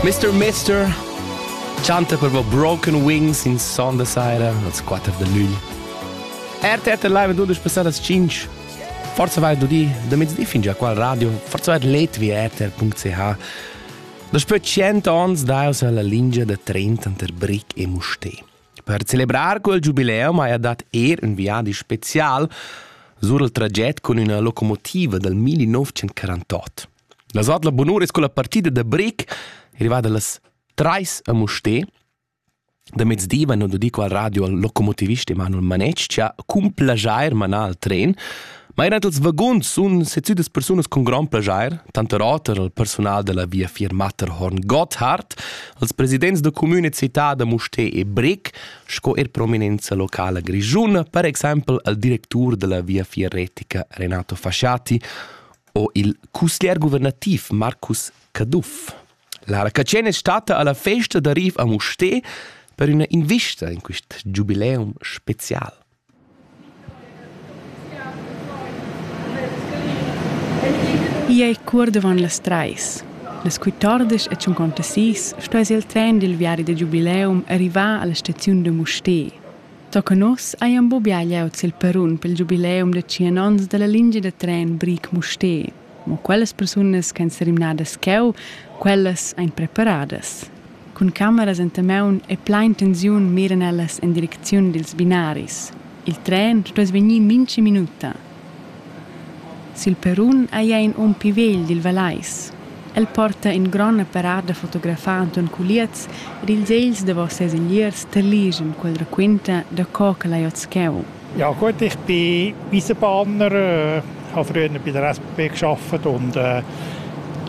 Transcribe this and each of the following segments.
Mr. Mister chanta per voi Broken Wings in Son da Saira als 4 de lügl. RTRT Live 12 passate alle 5. Forza vai do di, da mezzdi fin già qua radio, forza vai Latvia RTR.ch. Da spö 100 ans daus alla lingia da 30 ter Brick e Mustè. Per celebrar quel giubileum haja dat er un viadi special sur il traget con una locomotiva dal 1948. La zot la bunura es culla partida da bric rivada las trais a Musté da mezdi van do dico al radio al locomotivist Emanuel Manetsch cha cun plajair manar al tren ma eran els vaguns sun sezüdas persunas con grand plajair tanter oter al personal della via Firmatterhorn Gotthard als presidents da comune città da Musté e Bric sco er prominenza locala grigiuna per exaimpel al directur della via Fierretica Renato Fasciati o il cusglier guvernativ Marcus Caduff. Lara Catschén è stata alla festa da Riv a Mustè per üna invista in quist giubileum special. I è cur davant las trais. Las 14 e 56 sto es il tren dil viadi da giubileum arrivà alla staziun da Mustè. Tochen oz ei embubià glieud sil perrun pel giubileum da tschien onns dalla lingia da tren Briec-Mustér. Mo quellas persunas ch'ein serimnadas cheu, quellas ein preparadas. Cun cameras enta maun e plein tensiun miran ellas en direcziun dils binaris. Il tren stuess vegnir mintga minuta. Sil perrun ei ei in um pli vegl dil Vallais. El porta in gron apparat da fotografar Anton Culiez ed ils egls davos ses ingliers terligen quel raquenta da co ch'el ei oz cheu. Ja gut, ich bin Eisenbahner, äh, habe früher bei der SBB gearbeitet und äh,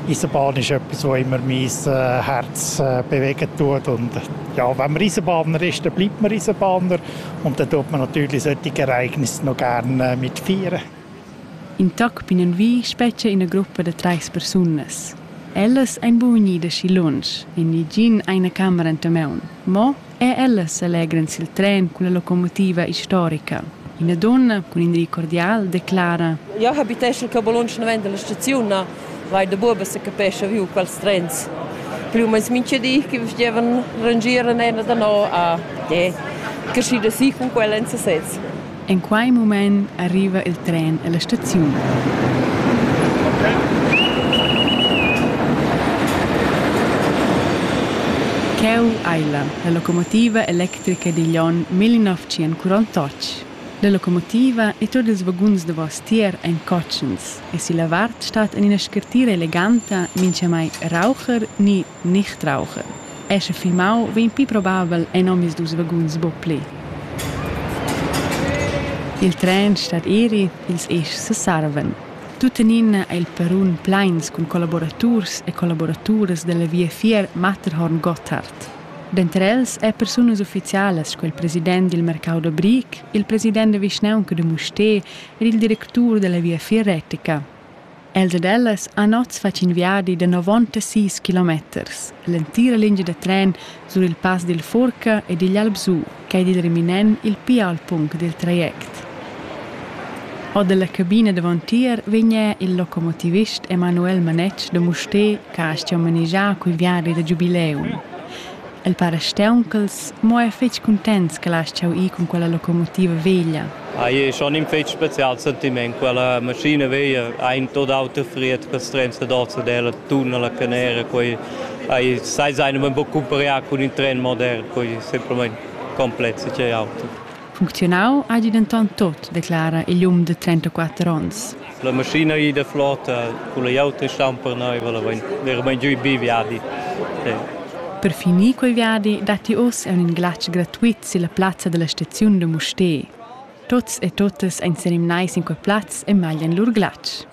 Eisenbahn ist etwas, was immer mein äh, Herz äh, bewegen tut. Und ja, wenn man Eisenbahner ist, dann bleibt man Eisenbahner. Und da tut man natürlich solche Ereignisse noch gerne mitfeiern. In toc binnenvi spetga ina gruppa da treis persunas. Ellas ein buvenida schi lunsch, in nigin eine camera enta maun. Mo e ellas allegran sil tren culla locomotiva historica. Ina donna cun in rei cordial declara: Io habiteschel che bolunsch non venda la staziun. vai da buoba se capescha viu quels trens. Plü o meins mincha di che vestivan rangir an ena da no a e crescida si cun quella en sesez. In quei mument arriva il tren e la staziun. Cheu ei la, la locomotiva electrica digl onn 1948. La locomotiva e tot ils vaguns davos tier ein cotschens. e silla vart stat en ina scartira eleganta mintgamai raucher ni nicht raucher. Esser filmau vegn pli probabel en omisdus vaguns buc pli. Il tren stat eri, ils eschs sesarvan. Tuttenina è il perun pleins cun collaboraturs e collaboraturas dalla viafier Matterhorn Gotthard. Denter els è persunas ufficialas sco il president dil mercau da Brick, il president da vischnaunca de Musté er il directur dalla Viafier retica. Els ed ellas han oz fatg in viadi da 96 kilometers, l'entira lingia da tren sur il pass dil Furca ed igl Albsù, ch'ei dil reminent il pli ault punct dil traject. Ord dalla cabina davontier vegn il locomotivist Emanuel Manetsch da Mustér che ha manegià quei viadi da giubileum. El para steunchels, mo ei fetg cuntents ch'el ha astgau ir cun quella locomotiva veglia. Ei ei schon in fetg special sentiment. Quella maschina veglia ha in tot auter fried ch'ils trens dad Ozzadella, tunnel a Canera. Quei ei sai sein, men buc cumpariar cun in tren modern, quei semplamein complex e auter. Funcziunau hagi denton tot, declara igl um de trentaquater onns. La maschina ei da flota, culla auta stamper neiva, la vein veramein giu bi viadi. Per finir quel viadi datti oz aunc in glatsch gratuit silla plazza dalla staziun da Mustér. Tots e totas ein senimnai sin quei plaz e maglian lur glatsch.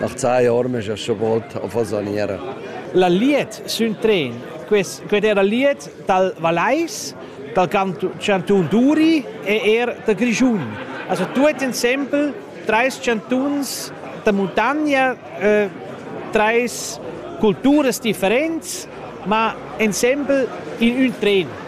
Marzai ormegia scha volt a Fasaniera. La liet sün tren, quet era liet dal Valais, dal Cantun d'Uri e er da Grischun. Also tuot insempel trais chantuns da muntagna, eh, trais culturas differents, ma insempel in ün tren.